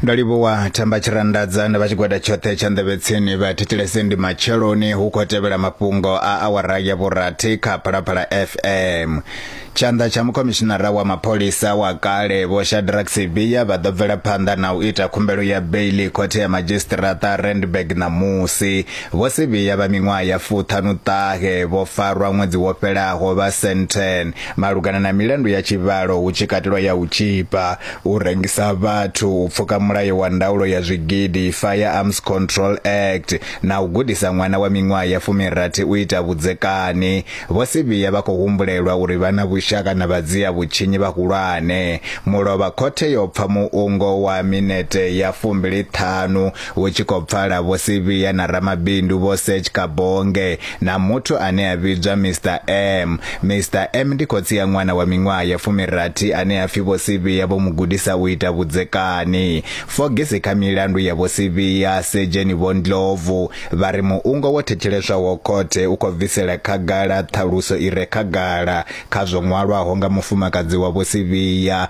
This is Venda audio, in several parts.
ndo livhuwa thamba tshirandadza na vha tshigwada tshoṱhe tsha nḓevhetsini vha thetshelese ndi matsheloni hu khou tevhela mafhungo a awara ya vhurathi kha phalaphala fm tshanḓa tsha mukhomishinara wa mapholisa wa kale vho shadrack sibiya vha ḓo bvela phanḓa na u ita khumbelo ya beili khothe ya madzhisiṱiraṱa randburg ṋamusi vho sibiya vha miṅwaha ya fuṱhanuṱahe vho farwa ṅwedzi wo fhelaho vha senten malugana na milandu ya tshivhalo hu tshi katelwa ya u tzhipa, u rengisa vhathu, u pfuka mulayo wa ndaulo ya zwigidi, Firearms Control Act, na u gudisa ṅwana wa miṅwaha ya fumirathi u ita vhudzekani. Vho Sibiya vha khou humbulelwa uri vha na vhushaka na vhadzia vhutshinyi vhahulwane. Mulovha khothe yo pfa muungo wa minete ya fumbili ṱhanu Hu tshi khou pfala Vho Sibiya na ramabindu Vho Serge Kabonge na muthu ane a vhidzwa Mister M. Mister M ndi khotsi ya ṅwana wa miṅwaha ya fumirathi ane a pfi Vho Sibiya vho mu gudisa u ita vhudzekani. Fogisi kha milandu ya Vho Sibiya, Sedzheni Vho Ndlovu, vha ri muungo wo thetsheleswaho khothe u khou bvisela khagala ṱhaluso i re khagala kha zwo ṅwalwaho nga mufumakadzi wa Vho Sibiya,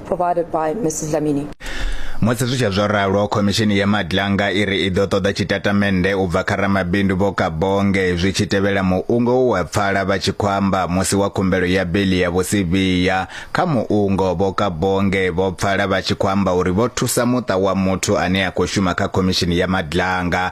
provided by Mrs. Dlamini. Musi zwi tshe zwo ralo, khomishini ya Madlanga i ri i ḓo ṱoḓa tshitatamennde u bva kha ramabindu Vho Kabonge zwi tshi tevhela muungo we wa pfala vha tshi khou amba musi wa khumbelo ya beiḽi ya Vho Sibiya. Kha muungo, Vho Kabonge vho pfala vha tshi khou amba uri vho thusa muṱa wa muthu ane a khou shuma kha khomishini ya Madlanga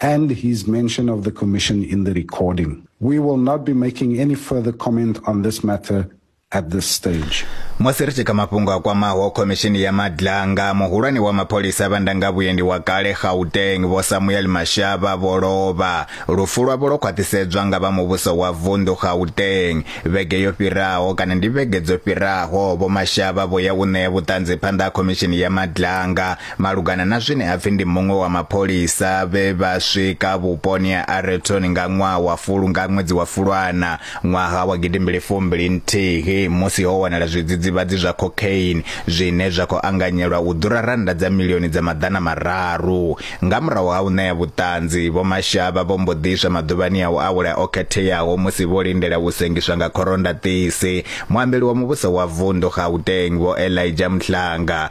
and his mention of the commission in the recording. We will not be making any further comment on this matter at this stage. musi ri tshi kha mafhungo a kwamaho khomishini ya madlanga muhulwane wa mapholisa vha ndanga vhuendi wa kale gauteng vho samuel mashava vho lovha lufu lwavho lwo khwaṱhisedzwa nga vha muvhuso wa vunḓu gauteng vhege yo fhiraho kana ndi vhege dzo fhiraho vho mashava vho ya u ṋea vhuṱanzi phanḓa ha khomishini ya madlanga Malugana na zwine ha pfi ndi muṅwe wa mapholisa vhe vha swika vhuponi ha Areton nga ṅwaha wa fulu nga ṅwedzi wa Fulwana ṅwaha wa gidimbili fumbili nthihi musi ho wanala zwidzidzivhadzi zwa cocaine zwine zwa khou anganyelwa u ḓura rannda dza milioni dza maḓana mararu. Nga murahu ha u ṋea vhuṱanzi, Vho Mashaba vho mbo ḓi iswa maḓuvhani a u awela o khetheaho musi vho lindela u sengiswa nga khorondaṱisi. Muambeli wa muvhuso wa vunḓu Gauteng, Vho Elijah Mhlanga,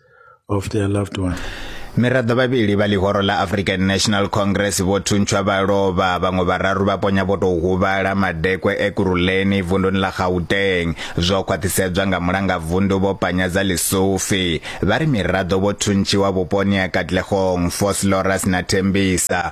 of their loved one. miraḓo vhavhili vha ḽihoro ḽa african national congress vho thuntshwa vha lovha vhaṅwe vhararu vha ponya vho tou huvhala madekwe ekuruleni vunduni ḽa gauteng zwo khwaṱhisedzwa nga mulanga vundu vho panyadza lisufi vha ri miraḓo vho thuntshiwa vhuponi ha katlegong foslorus na thembisa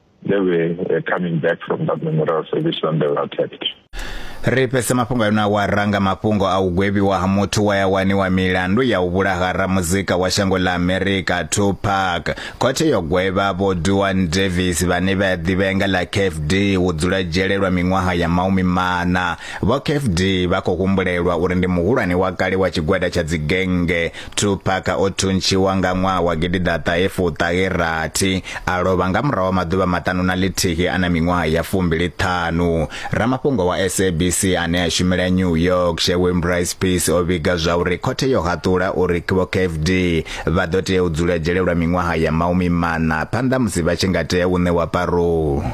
they were uh, coming back from that memorial service when they were attacked. ri fhese mafhungo ayo na wa ranga mafhungo a u gwevhiwa ha muthu wa ya waniwa milandu ya u vhulaha ramuzika wa shango ḽa amerika tupac khothe yo gwevha vho duan davis vhane vha ḓivhea nga ḽa kfd u dzula dzhele lwa miṅwaha ya maumi mana vho kfd vha khou humbulelwa uri ndi muhulwane wa kale wa tshigwada tsha dzigenge Tupac o thuntshiwa nga ṅwaha wa gidiḓaṱahe fuṱahe rathi a lovha nga murahu wa maḓuvha maṱanu na ḽithihi a na miṅwaha ya fumbili ṱhanu ramafhungo wa sabc ane a shumela new york shewin brice peace o vhiga zwa uri khothe yo haṱula uri vho kfd vha ḓo tea u dzula dzhele lwa miṅwaha ya maumi maṋa phanḓa musi vha tshi nga tea u ṋewa parou